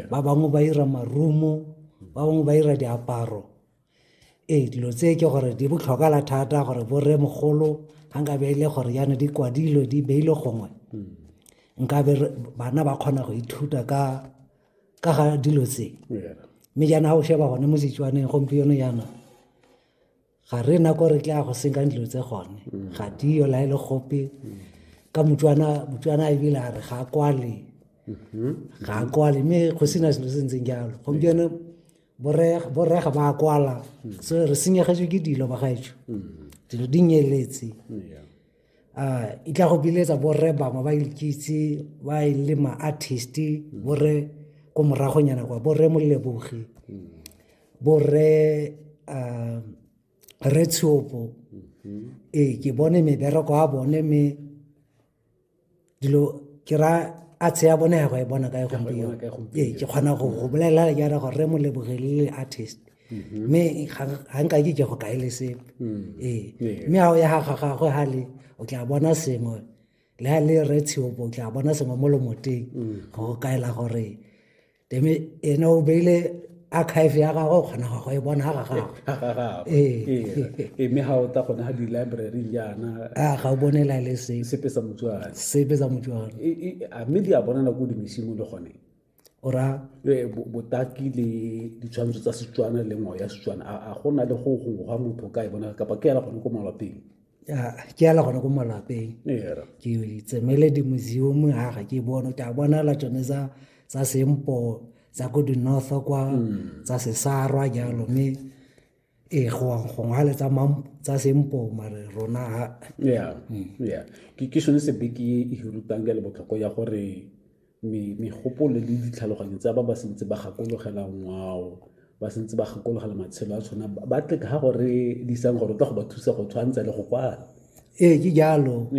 ba bangwe ba ira marumo ba bangwe ba ira diaparo ee dilo tse ke gore di botlhokala thata gore borre mogolo ga nka be e le gore yana di kwadilwe di beile gongwe hmm. nka be bana ba kgona go ithuta ka ka ga dilo tse mme jaana ga o sheba gone mo setswaneng gompieno yana ga re na ko re tla go senkang dilo tse gone mm. ga diyo la e le gope mm. ka motswana motswana e bile a re ga a kwale mm-hmm. ga a kwale mme go sena selo se ntseng jalo gompieno borrega ba a kwala mm. so re senyegetswe ke dilo bagaetsho dilo di nyeletse uh, e tla go biletsa borre bangwe ba ikitse ba e le ma-artist borre ko moragonyana kwa borre molebogi borre uh, re tshopo ee ke bone mebereko a bone me dilo ke ra a tshea bone ya go e bona kae gompieno ee ke kgona go go bolelela le jara gore re mo lebogelele artist mm-hmm. mme ga nka ke ke go kae le se mm. ee mme ga o ya ga gagwe ga le o tla bona sengwe le ga le re tsheopo o tla bona sengwe mo lomoteng mm. go kaela gore ene o beile archive ya gagwe o kgona go e bona ga gagwe mme ga o ta gone ga di-library jaana a ga o bone la le se sepe sa motswana sepe sa motswana a mme di a bona nako dimesimo le gone ora botaki le ditshwantsho tsa setswana le ngwao ya setswana a go na le go gongwe ga motho ka e bona kapa ke yana gone ko malwapeng ke ala gone ko malapeng ke tsemele di-museum ha ga ke bone ke a bonala tsone tsa sempo tsa ko di-north kwa mm. tsa sesarwa jalo mme ee gongwe le tsa sempo mare rona ha mm. ke sone sebeke e hirutang ka le botlhoko ya gore megopolo le ditlhaloganyo tsa ba ba sentse ba gakologela ngwao ba sentse ba gakologela matshelo a tshwana ba tle ka go re disang gore tla go ba thusa go tshwantsha le go kwala ee ke jalo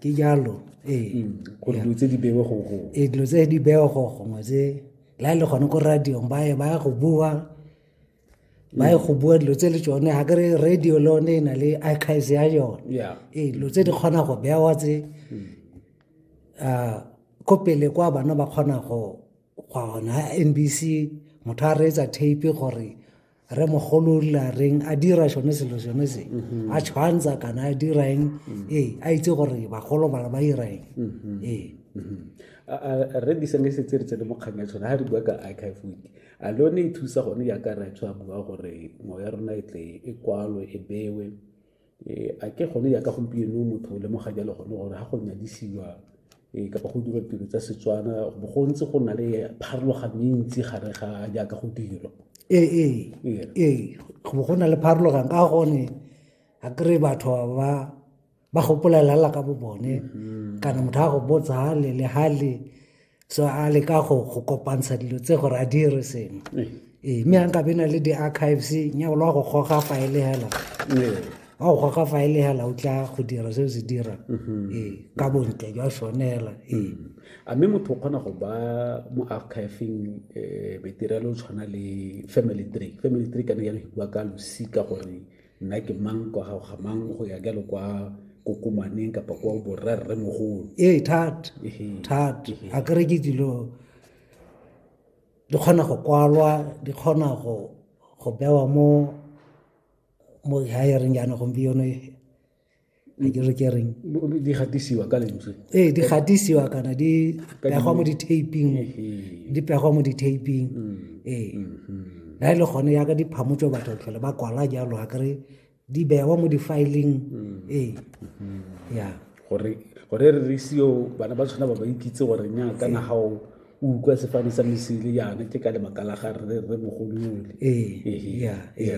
ke jalo ee mm, gore dilo tse di bewe go go ee dilo tse di bewe go gongwe tse la e le gone ko radiong ba ye ba ya go bua ba e go bua dilo tse le tsone ga kere radio le one e na le archives ya yone ee dilo tse di kgona go bewa tse um ko pele kwa bana ba kgona go gwa gona n b c motho a reetsa tape gore re mogolo la reng a dira sone selo sone se mm-hmm. a tshwantsha kana a dira eng mm-hmm. ee a itse gore bagolo bana ba dira eng mm-hmm. ee re diseng le setse re tsene mo kgang ya tshone ga re bua ka archive week a le yone e thusa gone yaka ratho a bua gore ngwao ya rona e tle e kwalwe e bewe e, a ke gone yaka gompieno motho o lemoga jalo gone gore ga go nyadisiwa e, kapa go dira tiro tsa setswana bo go ntse go na le pharologano e ntsi gare ga jaaka go dirwa ee ee, ee ee go na le pharologano ka gone a kry batho ba ba gopolelela ka bo bone mm-hmm. kana motho a go botsa hale le hale so a le ka go go kopantsha dilo tse gore a dire sengwe ee eh, mme a nka bena le di-archives nyabo le wa go goga faele hela wa go goga faele hela o tla go dira se o se dira mm-hmm. ee ka bontle jwa sone hela ee mm-hmm. a mme motho o kgona go ba mo archiving um eh, metirelo o tshwana le family tree family tree ka ne ya go bua ka losika gore nna ke mang kwa gago ga mang go ya jalo kwa kokomaneng kapa kwa borrerre mogolo ee thata thata a kere ke dilo di kgona go kwalwa di kgona go go bewa mo mo hiring yana gompieno a ke re ke reng di gatisiwa ka lentswe ee di gatisiwa kana di pegwa mo di-taping di pegwa mo di-taping mm. ee na mm-hmm. e le gone yaka di phamotso batho tlhole ba kwala jalo a kere di bewa mo di-filing mm. ee mm-hmm. ya gore gore re re seo bana ba tshwana ba ba ikitse gore nya ka na gago o utlwa sefane sa mesele yana ke ka lebaka la ga re re mogolole ee ya ee